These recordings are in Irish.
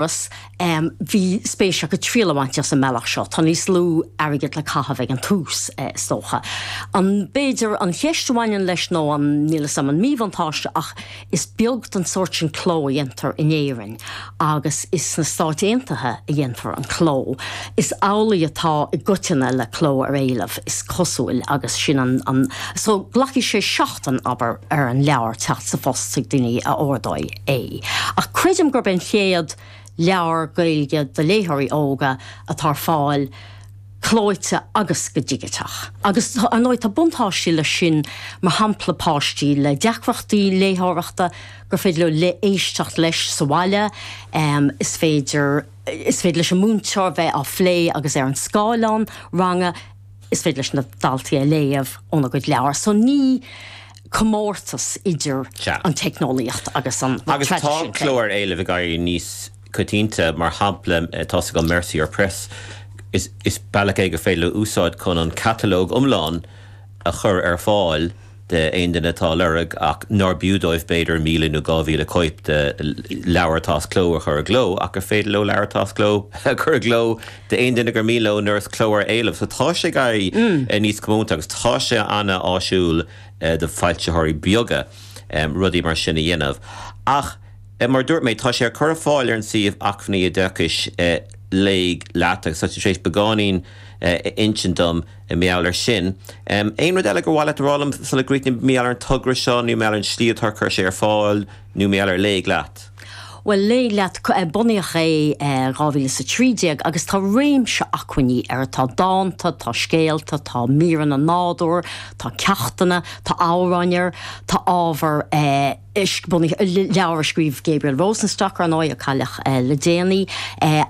Agus bhí spéis acu triail a bhaint as an mbealach seo. Tá níos lú airgid le caitheamh ag an tús, is dócha. An, b'fhéidir, an cheist a bhaineann leis nó an, níl 'fhios a'm, an míbhuntáiste ach is beag den sórt sin cló a dhéantar in Éirinn agus is sna Stáit Aontaithe a dhéantar an cló. Is amhlaidh atá i gcoitinne le cló ar éileamh, is cosúil, agus sin an, an. So, glacfaidh sé seachtain, abair, ar an leabhar teacht sa phost chuig daoine a ordóidh. é. Ach creidim gurb é an chéad leabhar Gaeilge do léitheoirí óga atá ar fáil clóite agus go digiteach. Agus ar ndóigh tá buntáistí leis sin, mar shampla páistí le deacrachtaí léitheoireachta, gur féidir leo éisteacht leis sa bhaile, is féidir is féidir leis an múinteoir bheith á phlé agus ar an scáileán ranga is féidir leis na daltaí é a léamh óna gcuid leabhar. So ní. comórtas idir an teicneolaíocht agus an traidisiún. Agus tá cló ar éileamh ag éirí níos coitianta, mar shampla tá sé ag Mercier Press, is bealach é gur féidir leo úsáid chun an catalóg iomlán a chur ar fáil d'aon duine atá a lorg ach nár b'fhiú dóibh b'fhéidir míle nó dhá mhíle cóip de leabhar atá as cló a chur i gcló ach gur féidir leo leabhar atá as cló a chur i gcló d'aon duine gur mian leo trí chló ar éileamh. So tá sé ag éirí níos comónta agus tá sé an-áisiúil d'fhoilsitheoirí beaga rudaí mar sin a dhéanamh. Ach mar a dúirt mé, tá sé á chur ar fáil ar an suíomh acmhainní oideachais, Léigh Leat, agus tá tú tar éis beagáinín a insint dom i ngeall air sin. Aon rud eile gur mhaith leat a rá liom sula gcríochnaím, i ngeall ar an togra seo nó i ngeall ar an slí atá ar cur sé ar fáil? Nó mar Léigh Leat? Bhuel, Léigh Leat, bunaíodh é i dhá mhíle is a trí déag agus tá réimse acmhainní air, tá dánta, tá scéalta, tá míreanna nádúir, tá ceachtanna, tá amhráin air, tá ábhar bunaithe, leabhar a scríobh Gabriel Rosenstock, ar ndóigh, a cailleadh le déanaí,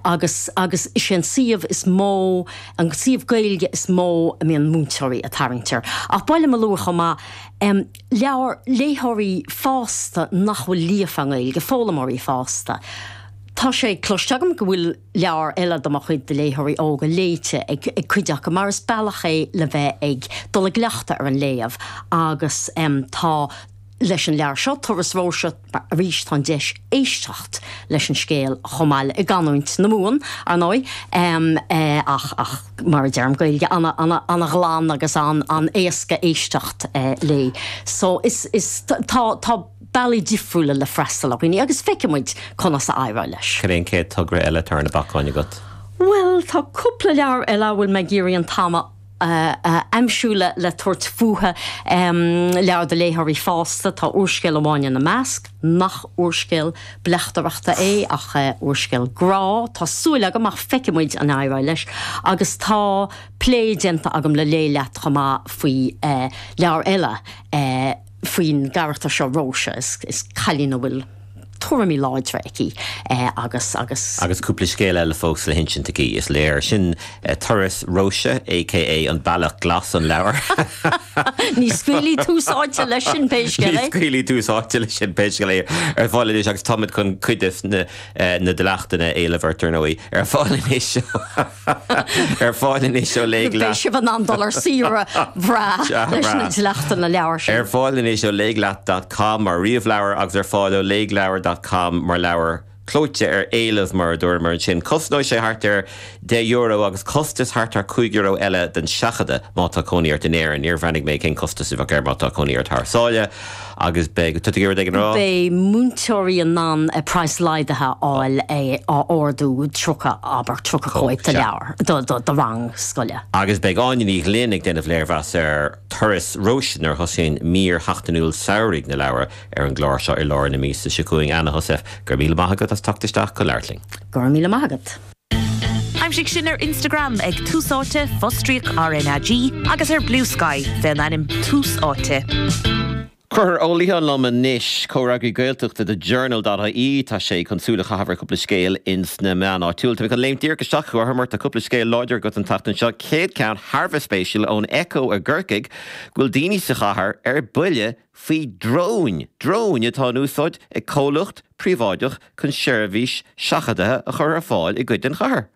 agus, agus is é an suíomh is mó, an suíomh Gaeilge is mó a mbíonn múinteoirí ag tarraingt air. Ach ba mhaith liom a lua chomh maith, le léitheoirí fásta nach bhfuil líofa i nGaeilge, foghlaimeoirí fásta. Tá sé cloiste agam go bhfuil leabhar eile de mo chuid do léitheoirí óga léite ag cuid acu mar is bealach é le bheith ag dul i gcleachtadh ar an léamh agus tá leis an leabhar seo, Turas Róise. Arís, tá an deis éisteacht leis an scéal chomh maith le, i gcanúint na Mumhan, ar ndóigh, ach mar a deirim, Gaeilge an-ghlan agus an-éasca éisteacht léi. So, is, is, tá, tá bealaí difriúla le freastal ar dhaoine agus feicfidh muid conas a éireoidh leis. Cad é an chéad togra eile atá ar na bacáin agat? Bhuel, tá cúpla leabhar eile a bhfuil mé ag iarraidh an t-am a. a aimsiú le tabhairt fúthu. Leabhair do léitheoirí fásta, tá úrscéal amháin ina measc, nach úrscéal bleachtaireachta é ach úrscéal grá, tá súil agam, ach feicfidh muid an éireoidh leis, agus tá plé déanta agam le Léigh Leat chomh maith faoi leabhar eile, faoin gcarachtar seo Róise, is cailín a bhfuil tuairimí láidre aici agus cúpla scéal eile fós le hinsint aici, is léir. Sin Turas Róise, aka an Bealach Glas, an leabhar. Ní scaoilfidh Tús Áite leis sin pé scéal é, ar fáil anois agus táimid chun cuid de na dleachtanna a éileamh ort, ar ndóigh, ar fáil anois. Ar fáil anois ó Léigh Leat. Beidh sibh in ann dul ar saoire bhreá leis na dleachtanna leabhar sin. Ar fáil anois ó léighleat.com mar ríomhleabhar agus ar fáil ó léighleabhar.com mar leabhar clóite ar éileamh mar a dúramar ansin. Cosnóidh sé thart ar deich euro agus costas thart ar cúig euro eile don seachadadh má tá cónaí ort in Éirinn. Níor bhreathnaigh mé cén costas a bheadh air má tá cónaí ort thar sáile. Agus beidh. Tá tú ag iarraidh rud éigin a rá? Beidh múinteoirí in ann praghas laghdaithe a fháil a ordú 30, abair, 30 cóip de leabhar do rang scoile. Agus beidh Áine Ní Ghlinn ag déanamh léirmheas ar Turas Róise nuair a thosaíonn mír sheachtainiúil samhraidh na leabhar ar an gclár seo i lár na míosa seo chugainn. Anna Heussaff, go raibh míle maith agat as teacht isteach ag labhairt linn. Go raibh míle maith agat. Aimsigh sinn ar Instagram ag Tús Áite, fostríoc RnaG, agus ar Bluesky fén ainm Tús Áite. Concubhar Ó Liatháin liom anois, Comhfhreagraí Gaeltachta The Journal.ie, tá sé chun súil a chaitheamh ar chúpla scéal ins na meáin áitiúil. Táimid chun léimt díreach isteach, a Choncubhair, tá cúpla scéal láidir agat an tseachtain seo, céad ceann thar a bheith spéisiúil ón Echo i gCorcaigh, go bhfuil daoine sa chathair ar buile, faoi dróin, dróin atá in úsáid ag comhlacht príobháideach chun seirbhís seachadaithe a chur ar fáil i gcuid den chathair.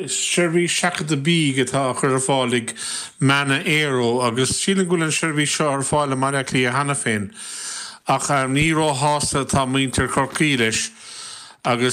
Seirbhís seachadta bídh atá á chur ar fáil ag Manna Aero agus sílim go bhfuil an seirbhís seo ar fáil i mBaile Átha Cliath cheana féin ach ní róshásta atá muintir Chorcaí leis agus